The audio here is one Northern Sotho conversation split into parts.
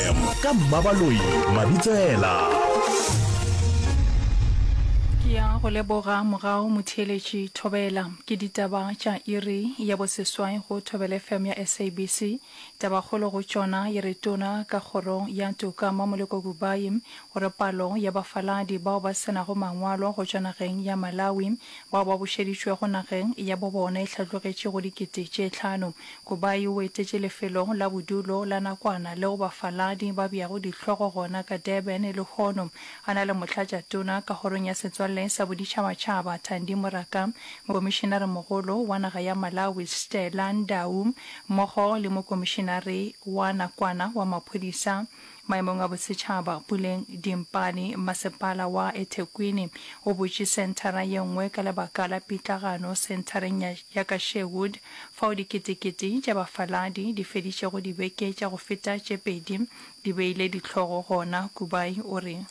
FM. Ka Mmabaloi Mabitsela. Ke ya go leboga mogao motheeletši Thobela. Ke ditaba tša iri ya boseswai go Thobela FM ya SABC. Tabakgolo go tšona e re tona ka kgoro ya toka Mmamoleko Kubayi o re palo ya bafaladi bao ba se nago mangwalo go tšwa nageng ya Malawi bao ba bušeditšwego nageng ya bo bona e hlatlogetše go dikete tše tlhano. Go ba yo o etetše lefelo la bodulo la nakwana leo bafaladi ba beago dihlogo gona ka Durban lehono, a na le Motlatšatona ka Kgorong ya Setswalle sa Boditšhabatšhaba Thandi Moraka, Mokomišenaremogolo wa naga ya Malawi Stella Ndau mmogo le Mokomišenare wa nakwana wa Maphodisa Maemong a Bosetšhaba, Puleng Dimpane, Masepala wa eThekwini o butše senthara ye nngwe ka lebaka la pitlagano senthareng ya ya ka Sherwood fao diketekete tša bafaladi di fedišego dibeke tša go feta tše pedi di beile dihlogo gona. Kubai o re.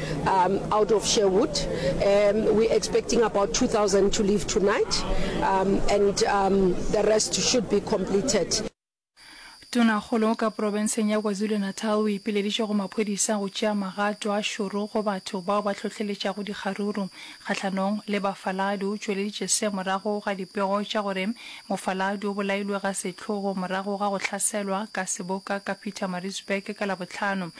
Um, out of Sherwood. Um, we're expecting about 2,000 to leave tonight, um, and um, the rest should be completed. Tonakgolo ka porobenseng ya KwaZulu-Natal o ipileditše go maphodisa go tšea magato a šoro go batho bao ba hlohleletšago dikgaruru kgahlanong le bafaladi. O tšweleditše se morago ga dipego tša gore mofaladi o bolailwe ga sehlogo morago ga go hlaselwa ka seboka ka Pietermaritzburg ka Labohlano.